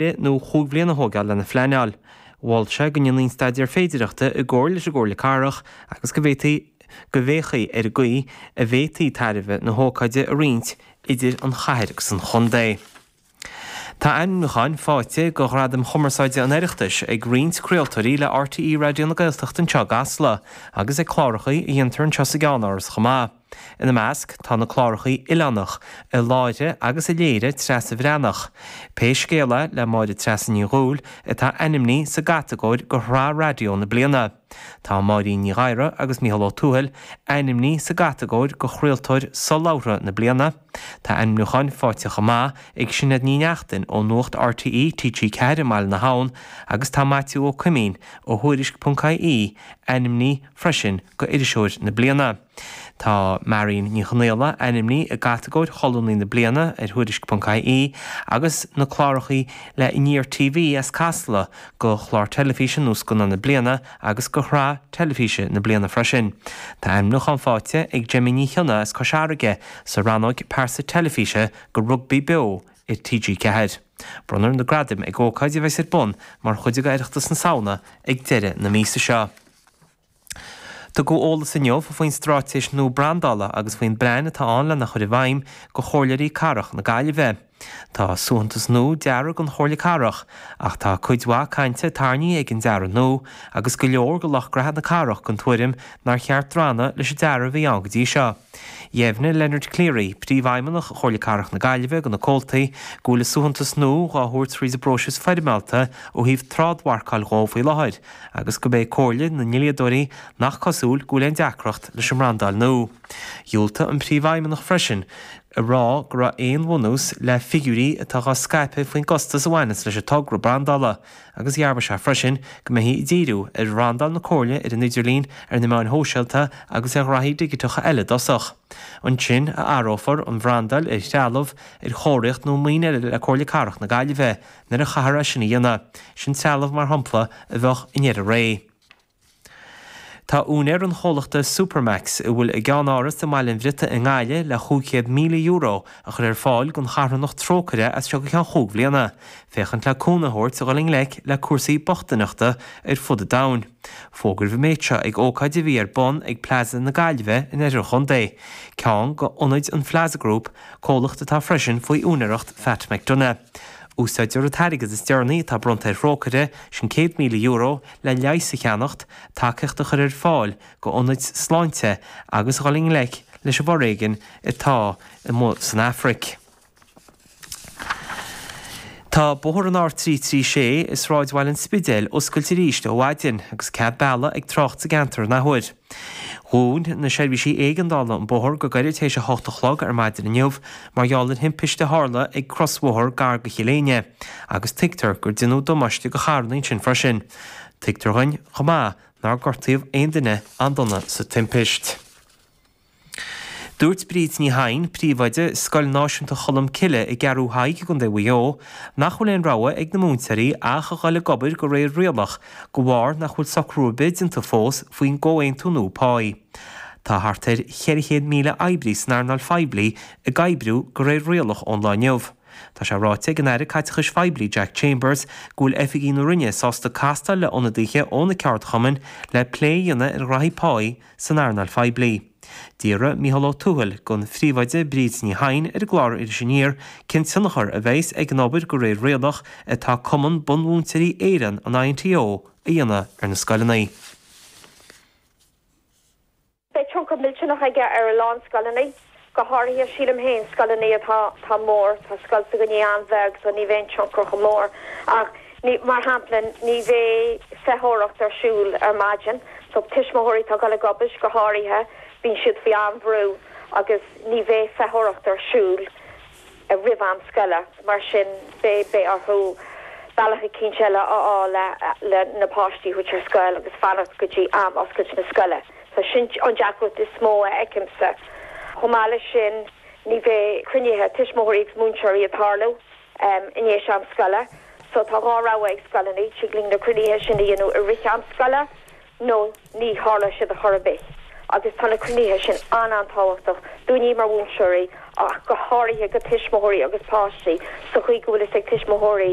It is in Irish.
Be nó chúig bhliana a thógáil lena phleanáil, mhol sé go ndéanfaí an staidéar féidireachta i gcomhar leis an gComhairle Cathrach agus go bhféachfaí ar an gcaoi a bhféadfaí tairbhe na hócáide a roinnt idir an chathair agus an chontae. Tá ainmniúcháin faighte do Ghradaim Chumarsáide an Oireachtais ag roinnt craoltóirí le RTÉ Raidió na Gaeltachta anseo i gCasla agus ag clárachaí a dhéantar anseo sa gceannáras chomh maith. Ina measc tá na clárachaí Oileánach, a láithrigh agus a léirigh Treasa Bhreathnach, Pé Scéal É le Máire Treasa Ní Dhubhghaill, atá ainmní sa gcatagóir do Shraith Raidió na Bliana. Tá Máirín Ní Ghadhra agus Micheál Ó Tuathail ainmní sa gcatagóir do Chraoltóir Solabhartha na Bliana. Tá ainmniúchán faighte chomh maith ag Sinéad Ní Neachtain ó Nuacht RTÉ, TG4 i mBaile na hAbhann agus tá Maitiú Ó Coimín ó Thuairisc.ie ainmní freisin go Iriseoir na Bliana. Tá Marion Ní Chonaola ainmní i gcatagóir Cholúnaí na Bliana ar Thuairisc.ie agus na clárachaí le Aniar TV as Casla go Chlár Teilifíse nó Scannán na Bliana agus go Shraith Teilifíse na Bliana freisin. Tá ainmniúchán fáighte ag Gemma Ní Chionnaith as Cois Fharraige sa rannóg Pearsa Teilifíse go Rugbaí Beo ar TG4. Bronnfar na gradaim ag ócáid a bheas ar bun mar chuid de Oireachtas na Samhna ag deireadh na míosa seo. Tugadh eolas inniu faoin straitéis nua brandála agus faoin bplean atá ann lena chur i bhfeidhm go Chomhairleoirí Cathrach na Gaillimhe. Tá suaitheantas nua deartha don Chomhairle Cathrach, ach tá cuid mhaith cainte tairní ag an dearadh nua agus go leor de lucht graithe na cathrach den tuairim nár cheart drannadh leis an dearadh a bhí ann go dtí seo. Dheimhnigh Leonard Cleary, Príomhfheidhmeannach Chomhairle Cathrach na Gaillimhe do na comhaltaí go bhfuil an suaitheantas nua dhá thabhairt thríd an bpróiseas foirmeálta ó thaobh trádmharcáil dhó faoi láthair, agus gurb é comhairle na ndlíodóirí nach cosúil go bhfuil aon deacracht leis an mbrandáil nua. Dhiúltaigh an Príomhfheidhmeannach freisin a rá go raibh aon bhunús le figiúirí atá á scaipeadh faoin gcostas a bhaineanns leis an togra brandála agus dhearbhaigh sé freisin go mbeifí ag díriú ar bhrandáil na Comhairle ar an idirlíon, ar na meáin shóisialta agus ar ghraithí digiteacha eile i dtosach. Ansin a athrófar an bhrandáil ar threalamh, ar chomharthaíocht nó ar mhaoin eile le Comhairle Cathrach na Gaillimhe. Nuair a chaithfear é sin a dhéanamh, sin trealamh, mar shampla, a bheadh i ndeireadh ré. Tá úinéir an chomhlachta Supermac's, a bhfuil a gceannáras i mBaile an Bhriotaigh i nGaillimh, le €500,000 a chur ar fáil don charthanacht Trócaire as seo go ceann chúig bhliana, féachaint le cúnamh a thabhairt a dhul i ngleic le cúrsaí bochtaineachta ar fud an domhain. Fógraíodh an méid seo ag ócáid a bhí ar bun ag Plaza na Gaillimhe in oirthear an chontae, ceann de ionaid an Plaza Group, comhlacht atá freisin faoi úinéireacht Phat McDonagh. Úsáidtear an t-airgead is deireanaí atá bronnta ar Thrócaire, sin €100,000, le leigheas a cheannacht, tacaíocht a chur ar fáil go ionaid sláinte agus a dhul i ngleic leis an bhforéigean atá amuigh san Afraic. Tá bóthar an R336 i sráidbhaile an Spidéil oscailte arís ó mhaidin agus cead bealaigh ag trácht sa gceantar an athuair. Dhún na seirbhísí éigeandála an bóthar go gairid tar éis 8 a chlog ar maidin inniu mar gheall ar thimpiste a tharla ag crosbhóthar gar go Cill Éinne agus tuigtear gur deineadh damáiste do charranna ansin freisin. Tuigtear dhúinn chomh maith nár gortaíodh aon duine an-dona sa timpist. Dúirt Bríd Ní Sheighin, Príomhoide, Scoil Náisiúnta Cholm Cille i gCeathrú Thaidhg i gContae Mhaigh Eo, nach bhfuil aon rogha ag na múinteoirí ach a dhul ag obair go réir rialach de bharr nach bhfuil socrú ar bith déanta fós faoin gcomhaontú nua páí. Tá thart ar 400,000 oibrí san earnáil phoiblí ag oibriú go réir rialach ón lá inniu. Tá sé ráite ag an Aire Caiteachais Phoiblí Jack Chambers go bhfuil oifigigh na Roinne sásta castáil le ionadaithe ó na ceardchumainn le plé a dhéanamh ar ghnaithí páí a san earnáil phoiblí. D'fhiafraigh Micheál Ó Tuathail den phríomhoide Bríd Ní Sheighin ar an gclár Iris Aniar cén tionchar a bheas ag an obair go réir rialach atá Cumann Bunmhúinteoirí Éireann, an INTO, a dhéanamh ar na scoileanna. Beidh tionchar millteanach aige ar a lán scoileanna. Go háirithe, sílim féin, scoileanna atá tá mór, tá scoil s'againne an-bheag so ní bheidh an tionchar chomh mór ach ní, mar shampla, ní bheidh feitheoireacht ar siúl ar maidin so tuismitheoirí atá ag dul ag obair, go háirithe, bíonn siad faoi an-bhrú agus ní bheidh feitheoireacht ar siúl. roimh am scoile. Mar sin, beidh orthu bealach eicínt eile a fháil le na páistí a thabhairt ar scoil agus fanacht go dtí am oscailt na scoile. So sin an deacracht is mó a fheicimse. Chomh maith leis sin, ní bheidh cruinnithe tuismitheoirí agus múinteoirí ag tarlú i ndéis am scoile. So tá dhá rogha ag scoileanna, tig linn na cruinnithe sin a dhéanamh i rith am scoile nó ní tharlóidh siad ar chor ar bith agus tá na cruinnithe sin an-an-tábhachtach dúinne mar mhúinteoirí ach go háirithe go tuismitheoirí agus páistí sa chaoi go bhfuil fhios ag tuismitheoirí